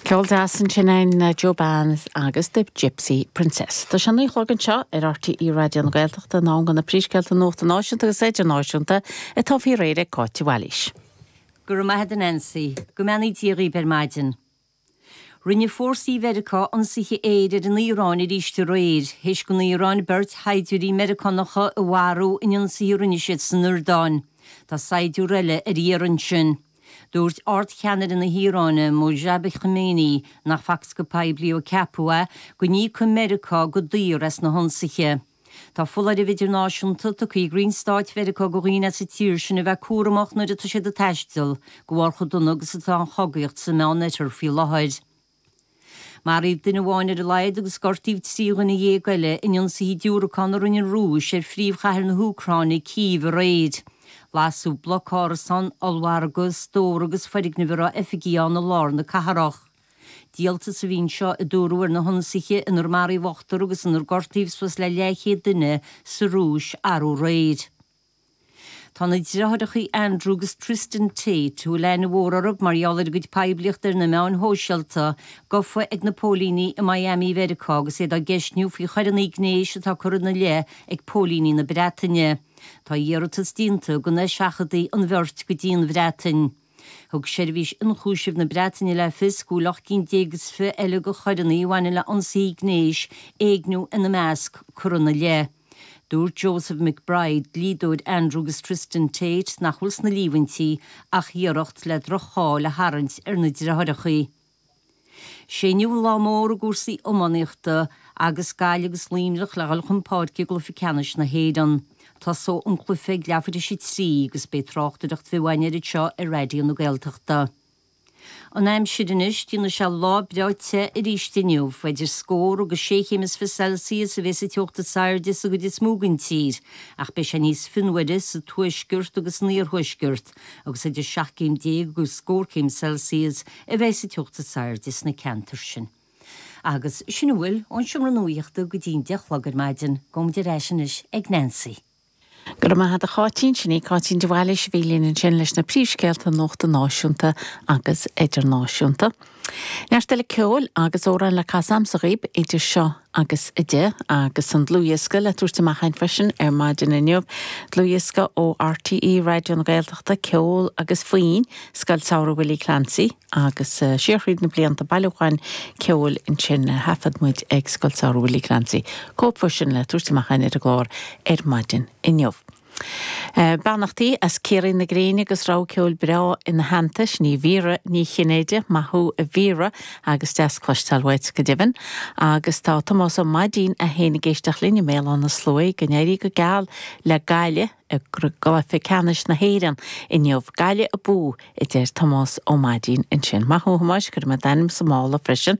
Ceol deas ansin é na Joe Bane's agus The Gypsy Princess. Tá sé a naoi a chlog anseo ar RTÉ Raidió na Gaeltachta, in am do na príomhscéalta nuachta náisiúnta agus idirnáisiúnta, atá faoi réir ag Cáitín de Bhailís. Go raibh maith 'ad Nancy. Go mbeannaí Dia dhaoib ar maidin. Rinne fórsaí Mheiriceá ionsaithe aeir ar an Iaráin arís aréir. Thar éis don Iaráin beirt shaighdiúirí Meiriceánacha a mharú in ionsaithe a rinne siad san Iordáin. Tá saighdiúir eile ar iarraidh ansin. Dúirt Ardcheannaire na hIaráine, Mojtaba Khamenei, nach facthas go poiblí ó ceapadh é, go n-íocfadh Meiriceá go daor as na hionsaithe. Tá foláireamh idirnáisiúnta tugtha ag Roinn Stáit Mheiriceá do dhaoine as an tír sin a bheith cúramach nuair atá siad ag taisteal, de bharr chomh dona agus atá an chogaíocht sa Mheánoirthear faoi láthair. Maraíodh duine amháin ar a laghad agus gortaíodh trí dhuine dhéag eile in ionsaithe diúracán a rinne an Rúis ar phríomhchathair na hÚcráine, Cív, aréir. Lasadh bloc árasán, ollmhargadh, stór agus foirgnimh a raibh oifigí ann i lár na cathrach. Díoltas a bhí anseo, a dúradh, ar na hionsaithe inar maraíodh ochtar agus inar gortaíodh suas le leathchéad duine sa Rúis arú aréir. Tá na deartháireacha Andrew agus Tristan Tate, a bhfuil aithne mhór orthu mar gheall ar a gcuid poiblíochta ar na meáin shóisialta, gofa ag na póilíní i Miami Mheiriceá agus iad á gceistniú faoi choireanna gnéis atá curtha ina leith ag póilíní na Breataine. Tá iarratas déanta go n-eiseachadfaí an bheirt go dtí an Bhreatain. Thug Seirbhís Ionchúisimh na Breataine le fios go bhfuil ocht gcinn déag is fiche eile de choireanna a bhaineann le ionsaithe gnéis, éigniú ina measc, curtha ina leith. Dúirt Joseph McBride, dlíodóir Andrew agus Tristan Tate, nach bhfuil sna líomhaintí ach iarracht le droch-cháil a tharraingt ar na deartháireacha. Is é inniu an lá mór i gcúrsaí iománaíochta agus Gaillimh agus Luimneach le dhul chun páirce i gcluiche ceannais na hÉireann. Tosóidh an cluiche ag leathuair thar éis a trí agus beidh tráchtaireacht bheo againn air anseo ar Raidió na Gaeltachta. An aimsir anois, déanfaidh sé lá breá te arís inniu, idir scór agus sé chéim is fiche Celsius a bheidh sa teocht is airde sa gcuid is mó den tír, ach beidh sé níos fionnuaire sa tuaisceart agus san iarthuaisceart. agus idir seacht gcéim déag agus scór céim Celsius a bheidh sa teocht is airde sna ceantair sin. Agus sin a bhfuil ón Seomra Nuachta go dtí an deich a chlog ar maidin, gabhfaidh muid ar ais anois ag Nancy. Go raibh maith agat a Cháitín, sin í Cáitín de Bhailís a bhí linn ansin leis na príomhscéalta nuachta náisiúnta agus idirnáisiúnta. Neart eile ceoil agus amhráin le casadh agamsa dhaoib idir seo agus a deich, agus an dlúthdhiosca le tabhairt amach againn freisin ar maidin inniu, dlúthdhiosca ó RTÉ Raidió na Gaeltachta, Ceol agus Foinn, Scoil Samhraidh Willie Clancy, agus siar thríd na blianta, bailiúchán ceoil ansin a thaifead muid ag Scoil Samhraidh Willie Clancy, cóip dhó sin le tabhairt amach againn ar an gclár ar maidin inniu. Beannachtaí as Ciarraí na Gréine agus rogha ceoil breá ina theannta, sin í Vera Ní Chinnéide, maith thú a Vera agus deas cloisteáil uait, go deimhin. Agus tá Tomás Ó Maidín é féin ag éisteacht linn i mBéal Átha na Sluaighe, go n-éirí go geal le Gaillimh i gcluiche ceannais na hÉireann inniu. Gaillimh abú! a deir Tomás Ó Maidín ansin. Maith thú a Thomáis, cuirfidh mé d'ainm sa mála freisin.